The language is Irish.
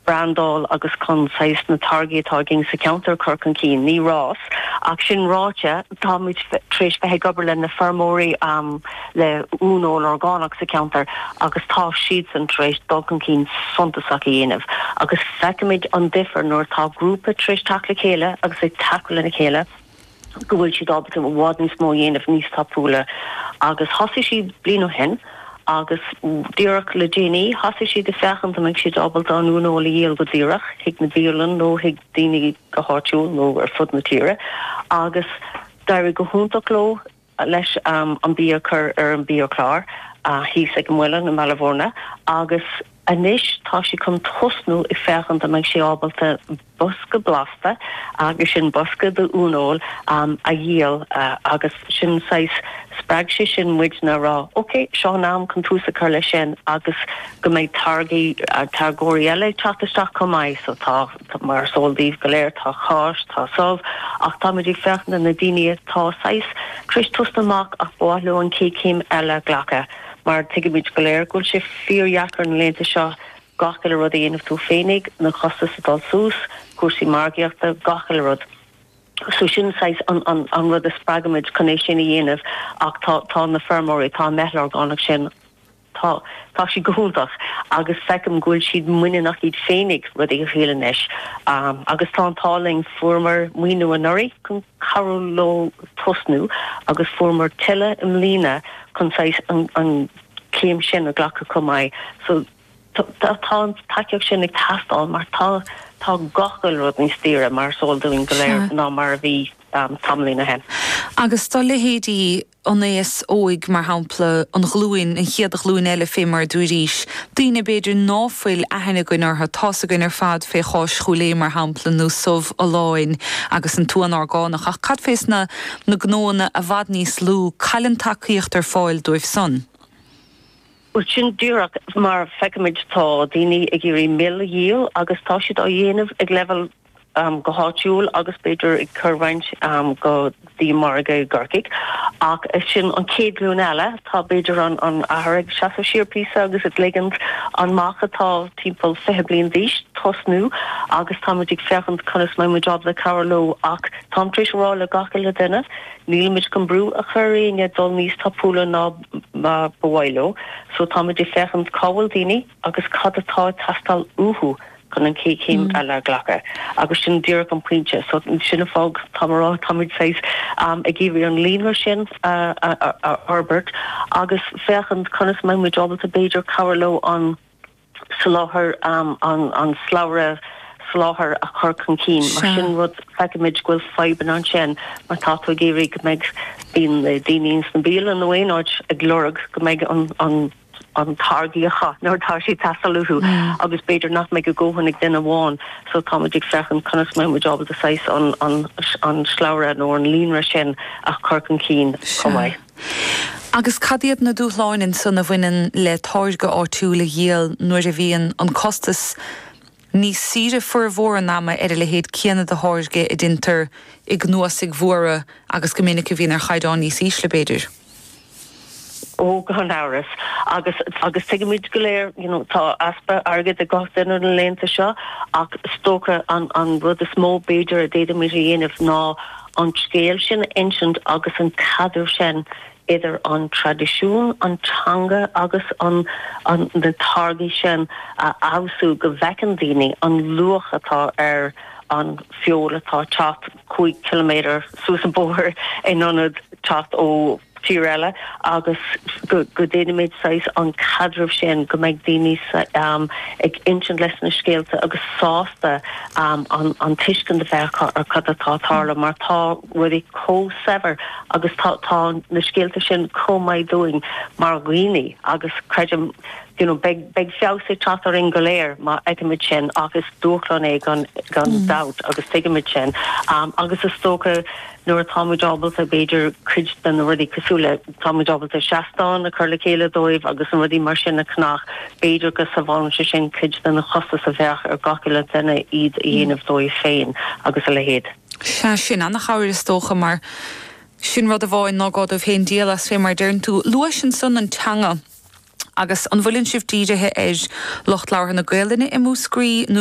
brandáil agus chun saghas na táirgí atá againn sa cheantar a chur chun cinn. Ní rás é, ach sin ráite, táimid tar éis bheith ag obair leis na feirmeoirí um le uaineoil orgánach sa cheantar agus tá siadsan tar éis dul chun cinn suntasach a dhéanamh agus feicimid an difear nuair atá grúpa tar éis teacht le chéile agus ag tacú lena chéile go bhfuil siad ábalta i bhfad níos mó a dhéanamh níos tapúla agus thosaigh siad bliain ó shin agus díreach le déanaí thosaigh siad ag féachaint an mbeidh siad ábalta an uaineoil a dhíol go díreach chuig na bialanna nó chuig daoine go háitiúil nó ar fud na tíre agus d'éirigh go hiontach leo. leis an bia a chur ar an mbiachlár thíos ag an muileann i mBaile Mhúirne agus anois tá sé chun tosnú ag féachaint an mbeidh sé ábalta bosca blasta, agus sin bosca d'uaineoil, a dhíol agus sin saghas, spreag sé sin muidne a rá ok, seo an am chun tús a chur leis sin agus go mbeidh táirgí, táirgeoirí eile ag teacht isteach chomh maith so tá. Mar is eol daoibh go léir tá cáis, tá subh, ach táimid ag féachaint do na daoine atá saghas tar éis tosnú amach ach ba mhaith leo an chéad chéim eile a ghlacadh. Mar tuigimid go léir go bhfuil sé fíordheacair na laethanta seo gach uile rud a dhéanamh tú féinig, na costais ag dul suas, cúrsaí margaíochta, gach uile rud. So sin saghas an rud a spreag muid chun é sin a dhéanamh ach tá na feirmeoirí, tá an meitheal orgánach sin, Tá. Tá siad go hiontach agus feicim go bhfuil siad muiníneach iad féinig rudaí a thriail anois agus tá an t-ádh linn. Fuaireamar maoiniú anuraidh chun cabhrú leo tosnú agus fuaireamar tuilleadh i mbliana chun saghas an chéim sin a ghlacadh chomh maith. So tá tá an tacaíocht sin ag teastáil mar tá tá gach uile rud níos daoire mar is eol dúinn go léir ná mar a bhí tamaillín ó shin. Agus do leithéidí an aos óig, mar shampla, an ghlúin, an chéad ghlúin eile fé mar a dúirís, daoine, b'fhéidir, ná fuil aithne againn orthu, tá's againn ar fad fé cháis Chúil Aodha, mar shampla, nó subh Folláin agus an t-uan orgánach, ach cad fés na na gnóanna i bhfad níos lú, cá bhfuil an tacaíocht ar fáil dóibhsan? Bhuel, sin díreach mar feicimid, tá daoine ag iarraidh mil a dhíol agus tá siad á dhéanamh ag leibheal go háitiúil agus b'fhéidir ag cur roinnt go dtí margadh i gCorcaigh ach sin an chéad ghlúin eile. Tá b'fhéidir an an athair ag seasamh siar píosa agus ag ligint an mac atá timpeall fiche bliain d'aois tosnú agus táimid ag féachaint conas mbeidh muid ábalta cabhair leo ach táim tar éis a rá le gach uile duine nílimid chun brú a chur ar éinne dul níos tapúla ná mar ba mhaith leo so táimid ag féachaint cá bhfuil daoine agus cad atá ag teastáil uathu chun an chéad chéim eile a ghlacadh agus sin díreach an pointe. So sin an fáth go bhfuilim ag rá táimid saghas ag iarraidh an líonra sin a fhorbairt agus féachaint conas a mbeidh muid ábalta b'fhéidir cabhrú leo an soláthar, an slabhra soláthair a chur chun cinn mar sin rud feicimid go bhfuil fadhbanna ansin mar tá tú ag iarraidh go mbeidh daoine ins na bialann nó aon áit ag lorg go mbeidh an an táirge acu nuair atá sé teastáil uathu agus b'fhéidir nach mbeidh a ndóthain ag duine amháin so tá muid ag féachaint conas a mbeidh muid ábalta saghas an slabhra nó an líonra sin a chur chun cinn chomh maith. Agus cad iad na dúshláin ansan a bhaineann le táirge áitiúil a dhíol nuair a bhíonn an costas Níos saoire formhór an ama ar a leithéid céanna de tháirge a dhéantar i gcnuasaigh mhóra agus go minic a bhíonn ar chaighdeán níos ísle, b'fhéidir. Ó, gan amhras. Agus, agus tuigimid go léir, you know, tá easpa airgid ag gach duine na laethanta seo ach is dócha an, an rud is mó b'fhéidir a d'fhéadfaimid a dhéanamh ná an scéal sin a insint agus an caidreamh sin idir an traidisiún, an teanga agus an na táirgí sin a fheabhsú go bhfeiceann daoine an luach atá ar an feoil atá ag teacht cúig chiliméadar suas an bóthar in ionad teacht ó thír eile agus go go déanaimid saghas an caidreamh sin go mbeidh daoine ag insint leis na scéalta agus sásta an tuiscint a bheith acu ar cad atá tarlú mar tá rudaí chomh saibhir agus tá tá na scéalta sin chomh maith dúinn mar dhaoine agus creidim you know beidh beidh feabhas ag teacht orainn go léir má fheicimid sin ach is dúshlán é gan gan dabht agus tuigimid sin um agus is dócha nuair atáimid ábalta b'fhéidir cuid de na rudaí cosúil le táimid ábalta seastán a chur le chéile dóibh agus an rudaí mar sin a cnach b'fhéidir go sábhálann sé sin cuid de na costais a bheadh ar gach uile duine iad a dhéanamh dóibh féin agus a leithéid Sea, sin an-chabhair is dócha, mar sin rud amháin nach gá dóibh féin díol as, fé mar a deireann tú. Luais ansan an teanga, agus an bhfuileann sibh dírithe air lucht labhartha na Gaelainne i Múscraí nó.?